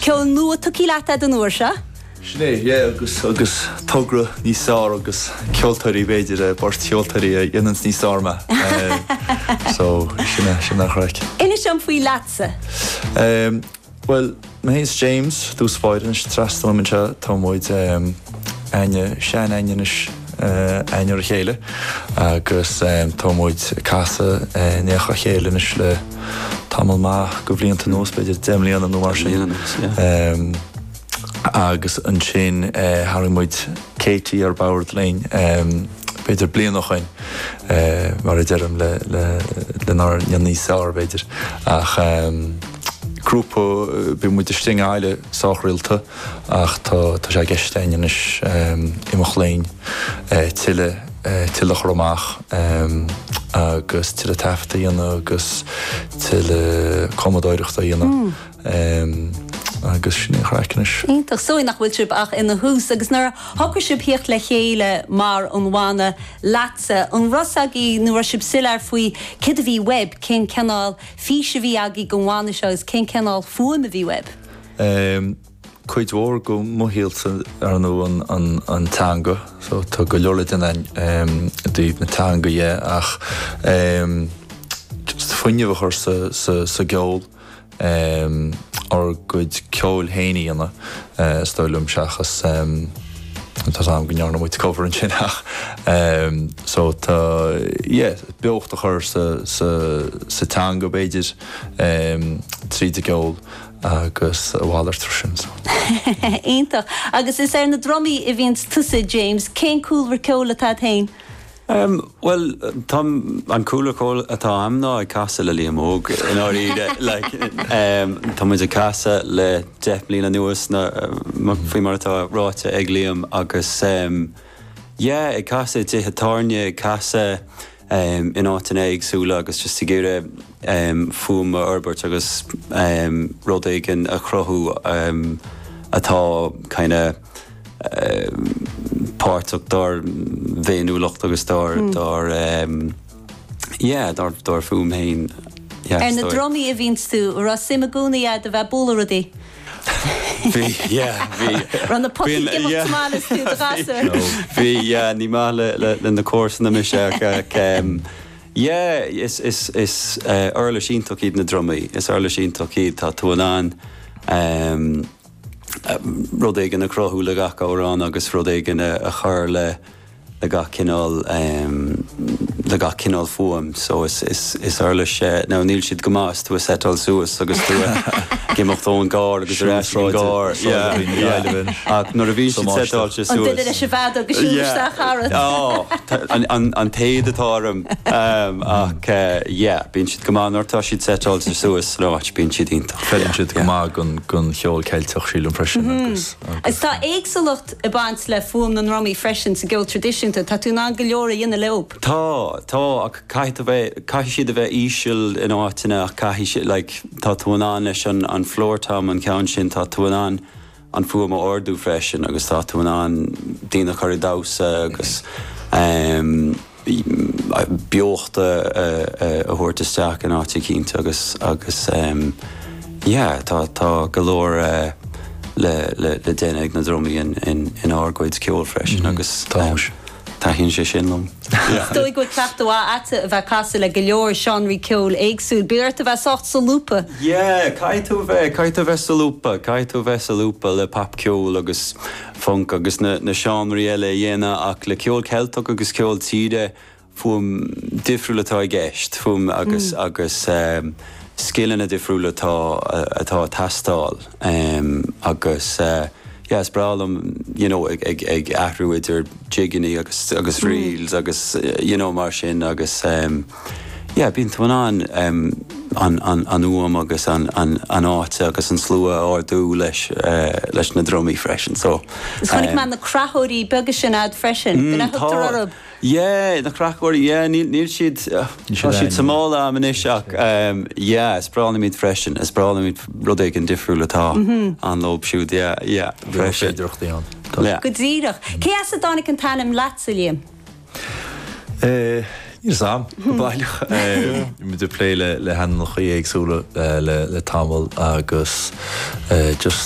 Ceol nua tugthaí leat a'd an uair seo? Sin é, yeah, agus agus togra níos fearr agus ceoltóirí b'fhéidir, eh, beirt cheoltóirí a dhéananns níos fearr mé. Eh, so, sin é, sin é an chraic. Inis dom faoi Leatsa. Ehm, bhuel, mé féin is James, dúspóir, anois trasna uaim anseo, tá muid, ehm, aithne, seanaithne anois, againn ar a chéile agus tá muid ag casadh in éineacht le chéile anois le tamall maith de bhlianta anuas, b'fhéidir deich mbliana nó mar sin. Agus ansin tharraing muid Katie ar bord linn b'fhéidir bliain ó shoin, mar a deirim, lenár ndéanamh níos fearr, b'fhéidir. Ach grúpa, bhí muid istigh i nGaillimh sách rialta. ach tá sé i gceist againn anois imeacht linn tuilleadh tuilleadh a chur amach agus tuilleadh taifeadta a dhéanamh agus tuilleadh cumadóireachta a dhéanamh agus sin é an chraic anois. Iontach. Is dóigh nach bhfuil sibh ach ina thús agus nuair a shocraigh sibh theacht le chéile mar an bhanna Leatsa, an raibh a fhios agaí nó raibh sibh soiléir faoi céard a bhí uaibh, cén cineál fís a bhí agaí don bhanna seo agus cén cineál fuaim a bhí uaibh? cuid mhór de mo shaol ar ndóigh an teanga so tá go leor le déanamh i dtaobh na teanga dhe ach just fuinneamh a chur sa gceol, ár gcuid ceoil fhéin a dhéanamh is dóigh liom seachas tá a fhios a'm go ndearna muid cover ansin ach so tá, yeah, beocht a chur sa teanga b'fhéidir tríd an gceol. Agus a mhalairt ar sin. Iontach. Agus is ar na drumaí a bhíonns tusa, James. Cén cúlra ceoil atá a't fhéin? Bhuel, tá, an cúlra ceoil atá a'm ná ag casadh le Liam Óg i ndáiríre. Like, tá muid ag casadh le deich mbliana anuas nó faoi mar atá ráite ag Liam agus yeah, ag casadh i dtithe tábhairne, ag casadh in áiteanna éagsúla agus just ag iarraidh fuaim a fhorbairt agus rud éigin a chruthú atá kind of páirteach dár bhféiniúlacht agus dár dár yeah, dár dár fuaim féin. Ar na drumaí a bhíonn tú, raibh suim i gcónaí a'd a bheith ag bualadh rudaí? Bhí, yeah, bhí. Raibh na potaí ag imeacht tamall is tú i do ghasúr. Bhí, yeah, ní maith le na comharsana mise ach, yeah, is uirlis iontach iad na drumaí, is uirlis iontach iad, tá tú in ann rud éigin a chruthú le gach amhrán agus rud éigin a chur le. le gach cineál le gach cineál fuaim so is is uirlis now níl siad go maith is tú ag setáil suas agus tú ag imeacht ón gcarr agus ar ais ón gcarr yeah ach nuair a bhíonn siad setáilte suas. An duine leis an bhfead agus siúl isteach thar an. yeah an an téad atá orm ehm ach yeah bíonn siad go maith nuair tá siad setáilte suas san áit bíonn siad iontach. Creideann siad go maith gon gon cheol Ceilteach sílim freisin agus agus. Is tá éagsúlacht ag baint le fuaim na ndrumaí freisin sa gceol tradisiúnta. Tá tú in ann go leor a dhéanamh leob. Tá, tá, ach caithfidh tú a bheith, caithfidh siad a bheith íseal in áiteanna ach caithfidh siad, like, tá tú in ann leis an, an floor tom, an ceann sin, tá tú in ann an fuaim a ardú freisin agus tá tú in ann daoine a chur ag damhsa agus, eh, beocht a thabhairt isteach in áit eicínt agus agus yeah tá tá go leor le le le déanamh ag na drumaí in in in ár gcuid ceoil freisin agus taithníonn sé sin liom. Is dóigh go bhfuil cleachtadh mhaith agatsa a bheith ag casadh le go leor seánraí ceoil éagsúil. Bheadh ort a bheith sách solúbtha. Yeah caithfidh tú a bheith caithfidh tú a bheith solúbtha caithfidh tú a bheith solúbtha le pop ceol agus func agus na seánraí eile a dhéanamh ach le ceol Ceilteach agus ceol tíre, fuaim difriúil atá i gceist, fuaim agus agus scileanna difriúla atá atá ag teastáil agus yeah is breá liom you know ag ag ag athrú idir jigeannaí agus agus reels agus you know mar sin agus. Yeah, bíonn tú in ann an fhuaim agus an áit agus an slua a ardú leis na drumaí freisin, so. Agus chonaic mé na creathóirí beaga sin a'd freisin, b'in a thugtar orthub? Yeah, na creathóirí, yeah, níl siad, tá siad sa mála a'm anois ach yeah, is breá liom iad freisin, is breá liom iad rud éigin difriúil atá ann leob siúd, yeah, yeah, freisin. Go díreach. Cé as a dtáinig an t-ainm LeatSA, Liam? Níl a fhios a'm go baileach. Muid ag plé le hainmneachaí éagsúla le tamall agus just